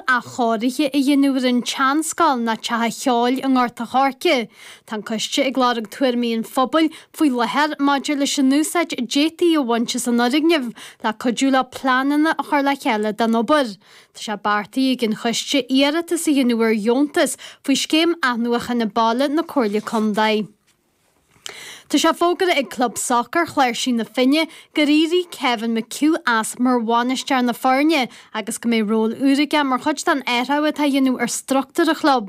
athchóirithe a dhéanamh ar an tseanscoil ná Teach an Cheoil i nGort a' Choirce. Tá an coiste ag lorg tuairimí an phobail faoi láthair maidir leis an úsáid a d'fhéadfaí a bhaint as an fhoirgneamh le cuidiú leo pleananna a chur le chéile don obair. Tá sé beartaithe ag an choiste iarratas a dhéanamh ar dheontas faoi Scéim Athnuachana Baile na Comhairle Contae. Tá sé fógartha ag Club Sacair Chláirsí na Finne gur éirigh Kevin McHugh as mar bhainisteoir na foirne agus go mbeidh ról úr aige mar chuid den athrú atá a dhéanamh ar struchtúr an chlub.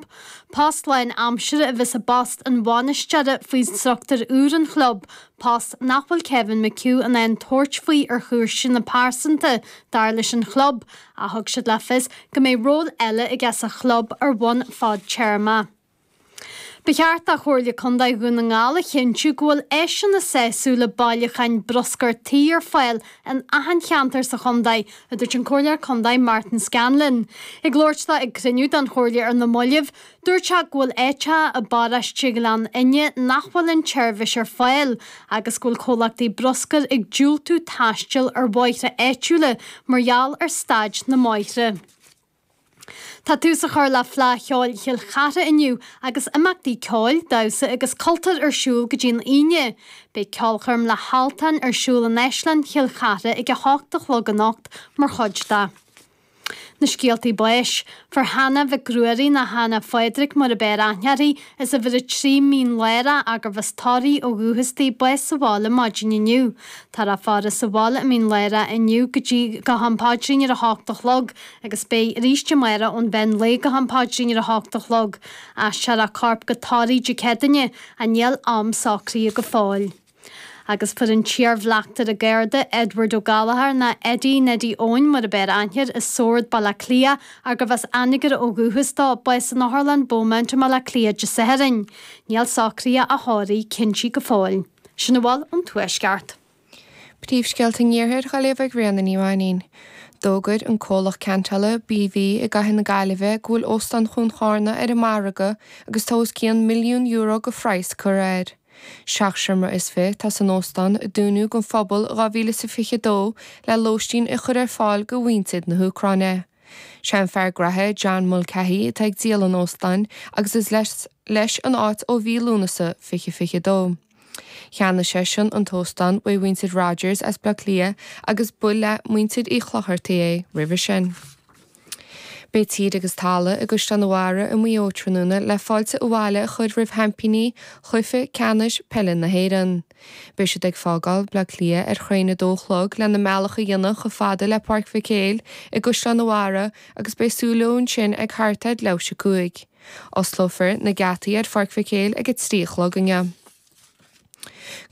Post lán aimsire a bheas i bpost an bhainisteora faoi struchtúr úr an chlub, post nach bhfuil Kevin McHugh in ann tabhairt faoi ar chúiseanna pearsanta, dar leis an chlub, ach thug siad le fios go mbeidh ról eile aige sa chlub ar bhonn fadtéarmach. Ba cheart do Chomhairle Contae Dhún na nGall a chinntiú go bhfuil áiseanna sásúla bailiúcháin bruscair tí ar fáil in achan cheantar sa chontae, a dúirt an Comhairleoir Contae Martin Scanlon. Ag labhairt dó ag cruinniú den Chomhairle ar na moillibh, dúirt sé go bhfuil áiteacha i bparóiste Ghleann Fhinne nach bhfuil an tseirbhis ar fáil agus go bhfuil comhlachtaí bruscair ag diúltú taisteal ar bhóithre áitiúla mar gheall ar staid na mbóithre. Tá tús a chur le Fleadh Cheoil Chill Chartha inniu agus imeachtaí ceoil, damhsa agus cultúir ar siúl go dtí an Aoine. Beidh ceolchoirm le hAltan ar siúl in Áislann Chill Chartha ag 8 a chlog anocht mar chuid de. Na scéaltaí báis, fuair Hannah Mhic Ruairí ná Hannah Phádraic mar ab fhearr aithne uirthi, as uimhir a trí Mín Lárach, ar gurbh as Toraigh ó dhúchas di, bás sa bhaile maidin inniu. Táthar á faire sa bhaile i Mín Lárach inniu go dtí go ham paidrín ar 8 a chlog. Agus beidh aríst amárach ón mheán lae go ham paidrín ar a hocht a chlog. Aistreofar a corp go Toraigh Dé Céadaoine, ach níl am socraithe go fóill. Agus fuair an t-iarbhleachtaire Garda, Edward Ó Gallchóir, ná Eddie Neddy Eoin mar ab fhearr aithne air, i Sord, Baile Átha Cliath, ar gurbh as Anagaire ó dhúchas dó, bás san Otharlann Beaumont i mBaile Átha Cliath Dé Sathairn. Níl socruithe a thórraimh cinntithe go fóill. Sin a bhfuil ón Tuaisceart. Príomhscéalta an Iarthair á léamh ag Ríona Ní Mhainín. D'fhógair an comhlacht ceantála, BV, i gcathair na Gaillimhe go bhfuil Óstán Chuan Chárna ar an margadh agus tá os cionn milliún euro go phraghas curtha air. Seacht seomra is fiche atá san óstán, a dúnadh don phobal i 2022 le lóistín a chur ar fáil go mhuintir na hÚcráine. 'Sé an fear gnaithe, John Mulcahy, atá ag díol an óstáin agus is leis an áit ó mhí Lúnasa 2022. Cheannaigh seisean an t-óstán uaidh mhuintir Rogers as Bleá Cliath agus ba le muintir Uí Chlochartaigh é roimhe sin. Beidh tír agus talamh i gCaisleán a' Bharraigh i Maigh Eo tráthnóna le fáilte abhaile a chur roimh sheaimpíní chluiche ceannais peile na hÉireann. Beidh siad ag fágáil Bhleá Cliath ar thraein a dó a chlog lena mbealach a dhéanamh chomh fada le Páirc Mhic Éil i gCaisleán a' Bharraigh agus beidh súil leo ansin ag thart ar leathuair tar éis a 5 Osclófar na geataí ar Pháirc Mhic Éil ag a trí a chlog inniu.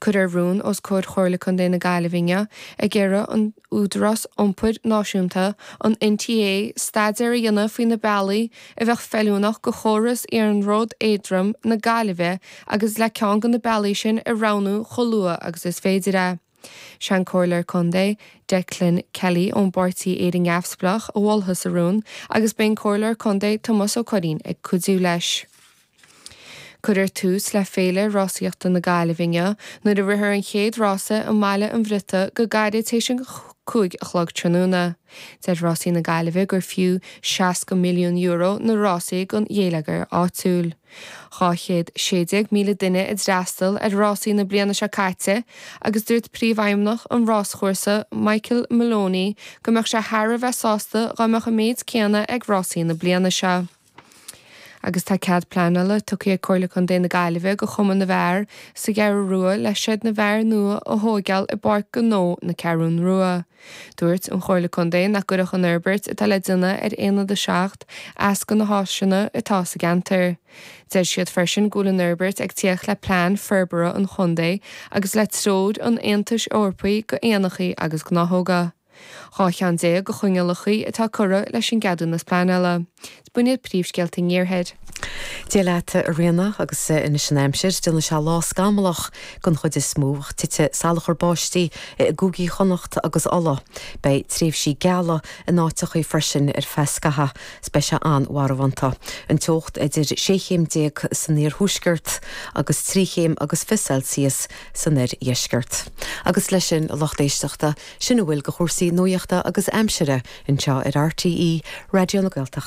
Cuirfear rún os comhair Chomhairle Contae na Gaillimhe inniu ag iarraidh an Údarás Iompair Náisiúnta, an NTA, staidéar a dhéanamh faoi na bealaí a bheadh feiliúnach do chóras Iarnród Éadrom na Gaillimhe agus le ceann de na bealaí sin a roghnú chomh luath agus is féidir é. Sé an Comhairleoir Contae, Declan Kelly ón bpáirtí Éire Neamhspleách, a mholfas an rún, agus beidh an Comhairleoir Contae, Tomás Ó Curraoin, ag cuidiú leis. Cuirfear tús le Féile Rásaíochta na Gaillimhe inniu nuair a rithfear an chéad rása i mBaile an Bhriotaigh go gairid tar éis an cúig a chlog tráthnóna. Deir Rásaí na Gaillimhe gur fiú €60 milliún na rásaí don gheilleagar áitiúil. 216,000 duine a d'fhreastail ar rásaí na bliana seo caite agus dúirt príomhfheidhmeannach an ráschúrsa, Michael Maloney, go mbeadh sé thar a bheith sásta dá mbeadh an méid céanna ag rásaí na bliana seo. Agus tá cead pleanála tugtha ag Comhairle Contae na Gaillimhe do Chumann na bhFear sa gCeathrú Rua le seid na bhfear nua a thóigeáil i bPáirc Gnó na Ceathrún Rua. Dúirt an Chomhairle Contae nach gcuirfeadh an fhorbairt atá le déanamh ar Aonad 7 as do na háiseanna atá sa gceantar. Deir siad freisin go bhfuil an fhorbairt ag tíocht le plean forbartha an chontae agus le treoir an Aontais Eorpaigh do éanachaí agus gnáthóga. Dhá cheann déag de choinníollachaí atá curtha leis an gceadúnas pleanála. B'in iad príomhscéalta an iarthair. Dia leat, a Ríona, agus anois an aimsir, déanfaidh sé lá scamallach den chuid is mó, ach titfidh salachar báistí i gCúigí Chonnacht agus Uladh. Beidh tréimhsí geala in áiteachaí freisin ar feadh scatha, 's beidh sé an-mharbhánta. An teocht idir 16 chéim san iarthuaisceart agus 3 chéim agus fiche Celsius san oirdheisceart. Agus leis sin a lucht éisteachta, sin a bhfuil de chúrsaí nuachta agus aimsire anseo ar RTÉ Raidió na Gaeltachta.